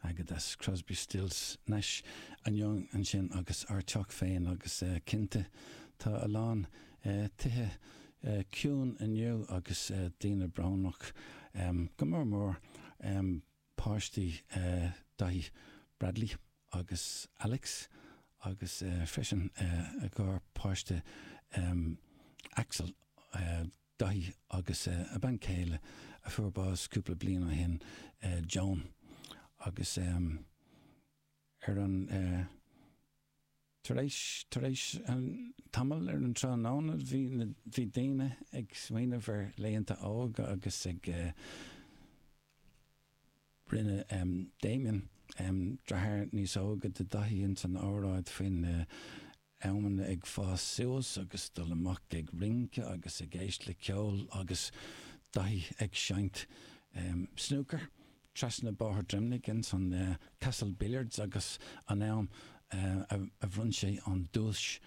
Agat ansin, Crosby, Stills, Nash and Young ansin agus ár teach féin agus cinnte tá a lán tithe ciúin inniu agus daoine brónach, go mór mór páistí Daithí, Bradley agus Alex agus freisin a garpháiste Axel. Daithí agus a bhean chéile a fuair bás cúpla bliain ó shin, Joan, agus ar an, tar éis, tar éis tamaill ar an tráthnóna bhí na, bhí daoine ag smaoineamh ar laethanta óga agus ag, rinne Damien, deartháir níos óige de Dhaithí ins an óráid faoin, amanna ag fás suas agus dul amach ag rince agus ag éist le ceol agus Daithí ag seinnt snúcair trasna Bóthar Droimnigh ins an Castle Billiards agus an am a bhronn sé an duais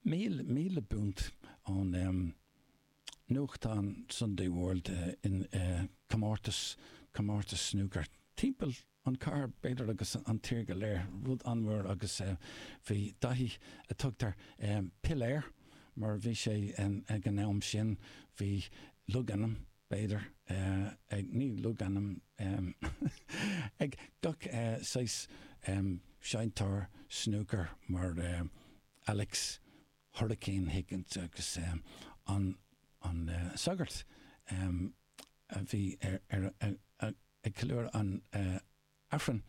míle punt ón nuachtán Sunday World in comórtas snúcair timpeall an cathair b'fhéidir agus an tír go léir, rud an-mhór agus bhí Daithí a tugtar piléar mar bhí sé ag an am sin bhí logainm b'fhéidir ag, ní logainm, ag gach saghas seinnteoir snúcair mar Alex Hurricane Higgins agus an sagart a bhí ar a. ag ceiliúradh an Aifrinn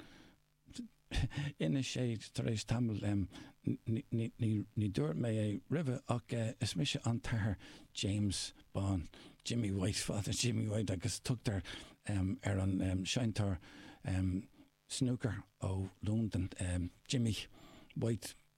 inis sé tar éis tamaill, ní dúirt mé é roimhe ach is mise an tAthair James Bán, Jimmy White, Father Jimmy White agus tugtar ar an seinnteoir snúcair ó Londain, Jimmy White.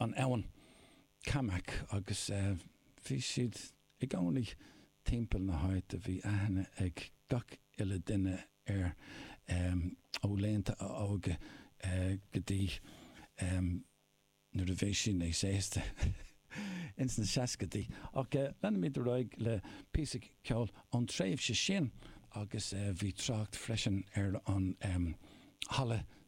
an abhainn Camac agus bhí siad i gcónaí timpeall na háite. Bhí aithne ag gach uile duine air ó laethanta a óige go dtí nuair a bhí sé níos aosta ins na seascaidí. Ach leanfaimid ar aghaidh le píosa ceoil ón tréimhse sin agus bhí trácht freisin ar an halla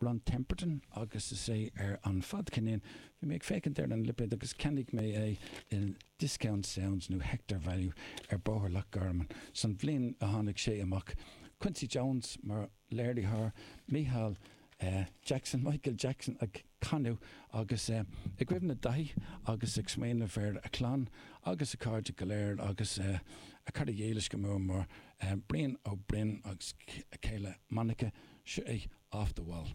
Rod Temperton agus is é ar an fadcheirnín bhí mé ag féachaint ar an lipéid agus cheannaigh mé é i Discount Sounds nó Record Value ar Bóthar Loch Garman san bhliain a tháinig sé amach. Quincy Jones mar léiritheoir, Micheál Jackson, Michael Jackson ag canadh agus é i gcuimhne Daithí agus ag smaoineamh ar a chlann agus a chairde go léir agus a chairde dhílis go mór mór Eh, Brian Ó Broin agus a chéile Monica, seo é off the wall.